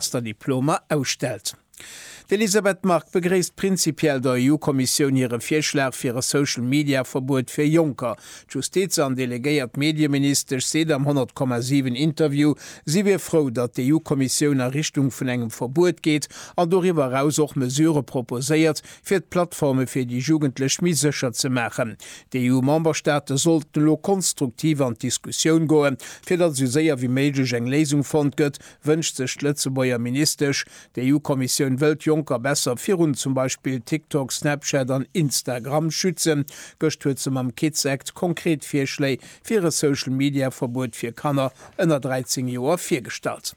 Master Diplomer ausstellt. D'Elisabeth Margue begréisst prinzipiell der EU-Kommissioun hire Virschlag fir e Social-Media-Verbuet fir Jonker. D'Justiz an delegéiert Medieministesch seet am 100,7 Interview, si wier frou, datt d'EU-Kommissioun a Richtung vun engem Verbuet geet an doriwwer eraus och Mesurë proposéiert, fir d'Plattforme fir déi Jugendlech méi sécher ze maachen. D'EU-Memberstaate sollten elo konstruktiv an d'Diskussioun goen, fir datt esou séier wéi méiglech eng Léisung fonnt gëtt, Wënscht sech d'Lëtzebuerger Ministesch. D'EU-Kommissioun wëll d'Jonker besser virun zum Beispill TikTok, Snapchat an Instagram schützen. Gëscht huet se mam Kids Act konkret Virschléi fir e Social-Media-Verbuet fir Kanner ënner 13 Joer virgestallt.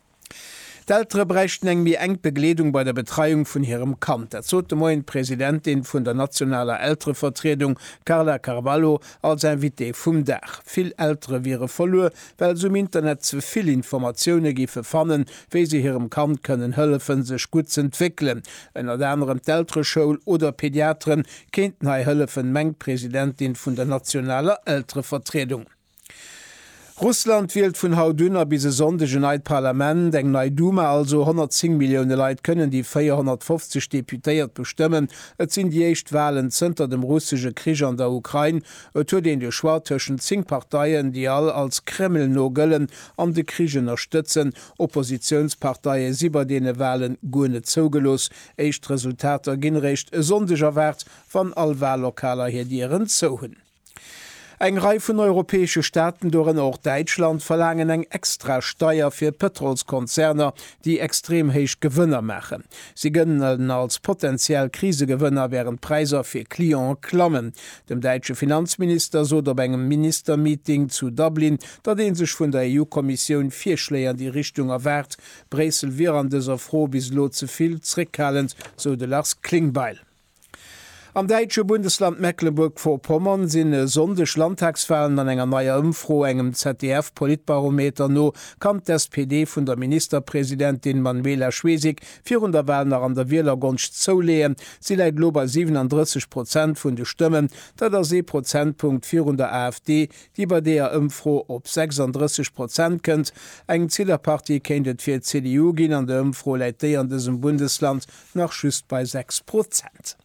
D'Eltere bräichten eng méi enk Begleedung bei der Betreiung vun hirem Kand. Dat sot de Moien d'Presidentin vun der nationaler Elterevertriedung Carla Carvalho als Invitée vum Dag. Vill Eltere wiere verluer, well se um Internet ze vill Informatioune géife fannen, wéi se hirem Kand kënnen hëllefen, sech gutt z'entwéckelen. Ënnert anerem d'Eltereschoul oder Pediateren kéinten hei hëllefen, mengt d'Presidentin vun der nationaler Elterevertriedung. Russland wielt vun haut un a bis e Sonndeg en neit Parlament, eng nei Duma also. 110 Millioune Leit kënnen déi 450 Deputéiert bestëmmen. Et sinn déi éischt Walen zënter dem russesche Krich an der Ukrain. Et huet een de Choix tëschent 10 Parteien, déi all als Kreml-no gëllen an de Krich ënnerstëtzen. Oppositiounsparteie si bei deene Walen guer net zougelooss. Éischt Resultater ginn eréischt e Sonndeg erwaart, wann all Wallokaler hir Dieren zou hunn. Eng Rei vun europäesche Staaten, dorënner och Däitschland, verlaangen eng extra Steier fir Pëtrolskonzerner, déi extrem héich Gewënner maachen. Si gëllen als potenziell Krisegewënner, wärend d'Präisser fir Clientë klammen. Dem däitsche Finanzminister sot op engem Ministermeeting zu Dublin, datt ee sech vun der EU-Kommissioun Virschléi an déi Richtung erwaart. Bréissel wier an dëser Fro bis elo ze vill zréckhalend, sou de Lars Klingbeil. Am däitsche Bundesland Mecklenburg-Vorpommern sinn e Sonndeg Landtagswalen an enger neier Ëmfro, engem ZDF-Politbarometer no, kann d'SPD vun der Ministerpresidentin Manuela Schwesig virun der Wal nach an der Wielergonscht zouleeën. Si läit elo bei 37 Prozent vun de Stëmmen, dat ass ee Prozentpunkt virun der AfD, déi bei deeër Ëmfro op 36 Prozent kënnt. Eng Zillerpartie kéint et fir d'CDU ginn, an der Ëmfro läit déi an dësem Bundesland nach just bei 6 Prozent.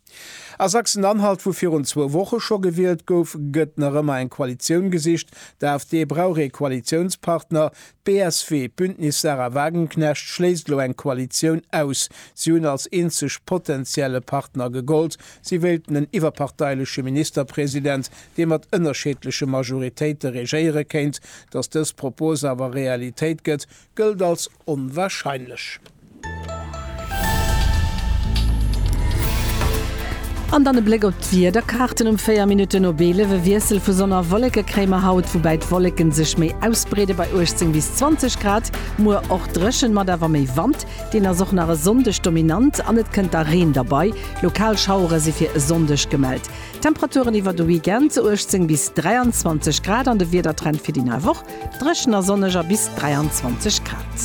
A Sachsen-Anhalt, wou virun zwou Woche scho gewielt gouf, gëtt nach ëmmer eng Koalitioun gesicht. D'AfD brauch ee Koalitiounspartner. D'BSW, Bündnis Sarah Wagenknecht, schléisst elo eng Koalitioun aus. Si hunn als eenzeg potentielle Partner gegollt. Si wéilten en iwwerparteileche Ministerpresident, dee mat ënnerscheedleche Majoritéite regéiere kéint. Datt dës Propos awer Realitéit gëtt, Gëllt als onwahrscheinlech. An dann e Bléck op d'Wiederkaarten um 4 Minutten op 11. E Wiessel vu Sonn a Wolleke kréie mer haut, woubäi d'Wolleken sech méi ausbreede bei 18 bis 20 Grad. Muer och dréchen, mat awer méi Wand, deen ass och nach e Sonndeg dominant an et kënnt da Reen derbei. Lokal Schauere si fir e Sonndeg gemellt. Temperaturen iwwer de Weekend, 18 bis 23 Grad an de Wiedertrend fir déi nei Woch. Dréchen a sonneg a bis 23 Grad.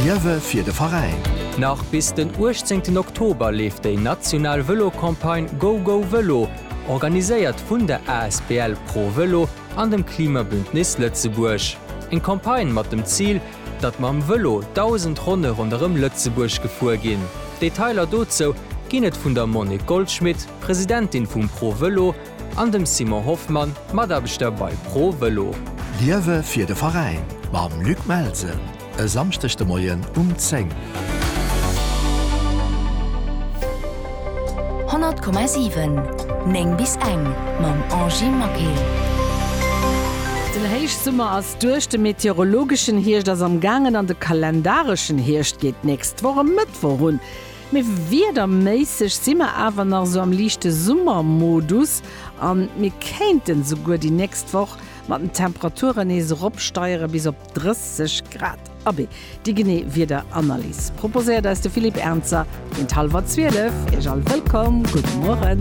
Liewe fir de Veräin! Nach bis den 18 Oktober leeft déi national Vëlo-Campagne Go Go Vëlo, organiséiert vun der asbl Pro Vëlo an dem Klimabündnis Lëtzebuerg. Eng Campagne mat dem Zil, datt mam Vëlo 1.000 Ronne ronderëm Lëtzebuerg gefuer ginn. Detailer dozou ginn et vun der Monique Goldschmit, Presidentin vum Pro Vëlo, An dem Simon Hoffmann, Mataarbechter bei ProVelo. Liewe fir de Veräin mam Luc Melsen e Samschdeg de Moien um 10. 100,7 9 bis eng mam Angie Maquet. Den Héichsummer ass duerch, de meteorologeschen Hierscht ass am gaangen an de kalendareschen Hierscht geet d'nächst Woch e Mëttwoch un. Mee wiederméisseg si mer awer nach esou am liichte Summermodus a mir kéinten esouguer déi nächst Woch mat den Temperaturen nees eropsteiere bis op 30 Grad. Abee, déi genee Wiederanalys proposéiert eis de Philippe Ernzer géint hallwer zwielef. Iech all wëllkomm, gudde Mueren.